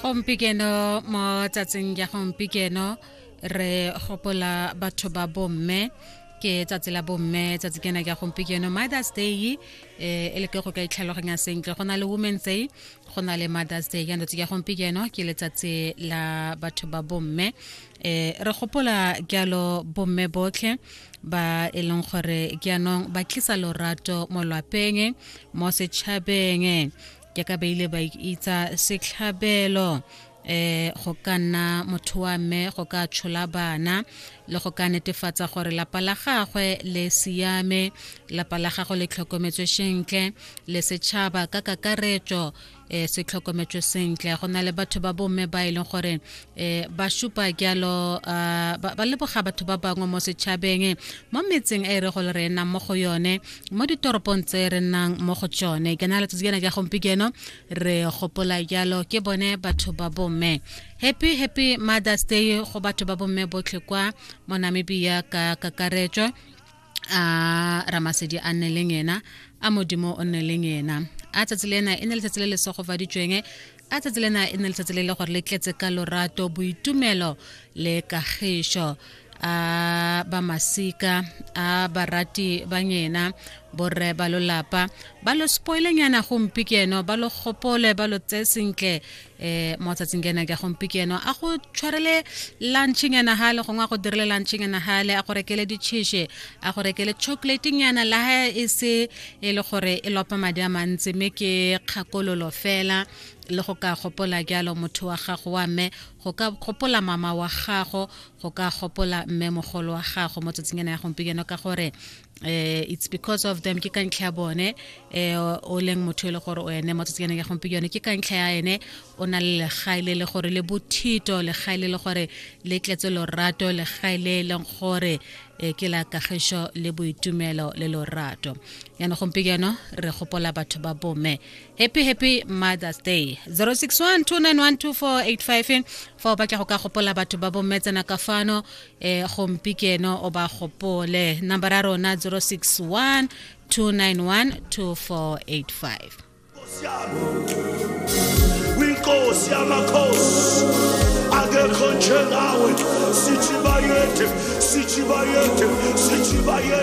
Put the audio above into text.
gompikeno mo tsatsing ya gompikeno re gopola batho ba bomme ke tsatsi la bomme tsatsi kena ke ya gompikeno mothers day eh, e le ke go ka itlhaloganya sentle go na le women's day go na le mothers day ya ndotse ya gompikeno ke letsatsi la batho ba bomme eh, re gopola jalo bomme botlhe ba e leng gore ke yanong ba tlisa lorato mo lwapeng mo setšhabeng ke ka ba ile ba itsa setlhabelo eh go ka nna motho wa mme go ka tshola bana le go ka netefatsa gore lapa la gagwe le siame lapa la gagwe le tlhokometswe sentle le setšhaba ka kakaretso eh se tlhokometswe sentle go na le batho ba bomme ba e leng gore e ba šupa jalo ba leboga batho ba bangwe mo setšhabeng mo metseng e re go le re nnang mo go yone mo ditoropong tse re nnang mo go tsone ke na letsatsi kena ja gompieno re gopola jalo ke bone batho ba bomme happy happy mothers day go batho ba bomme botlhe kwa mo namibia ka kakaretso a ramasedi a nne leng ena a modimo o nne leng ena a tsatsi le ena e ne letsatsi le le segofaditsweng a tsatsi le ena e ne letsatsi le le gore le tletse ka lorato boitumelo le kagišo a ba masika a barati ba ngena borre ba lolapa ba lo spoilenyana gompi ke eno ba lo gopole ba lo tseye sentle eh mo tsatsing kena ke gompikeno a go tshwarele lunching yana ha le gongwe a go dirile lunching yana ha le a go rekele ditšheshe a go rekele chocolating yana la ha e se e le gore e lopa madi a mantsi mme ke kgakololo fela le go ka gopola jalo motho wa gago wa mme go ka gopola mama wa gago go ka gopola mme mogolo wa gago mo tsatsing ena ya gompikeno ka gore eh it's because of them ke ka ntlha ya bone eh o leng motho e le gore o ene mo tsatsing ya gompi yone ke ka ntlha ya ene o na le legae le le gore le bothito legae le le gore le tletse lorato legae le e leng gore eh, ke la kagišo le boitumelo le lorato yana gompieno re gopola batho ba bome happy happy mothers day 0612912485 fa o batla go ka gopola batho ba bommetsana ka fano um eh, gompikeno o ba gopole number ya rona 061 291 2485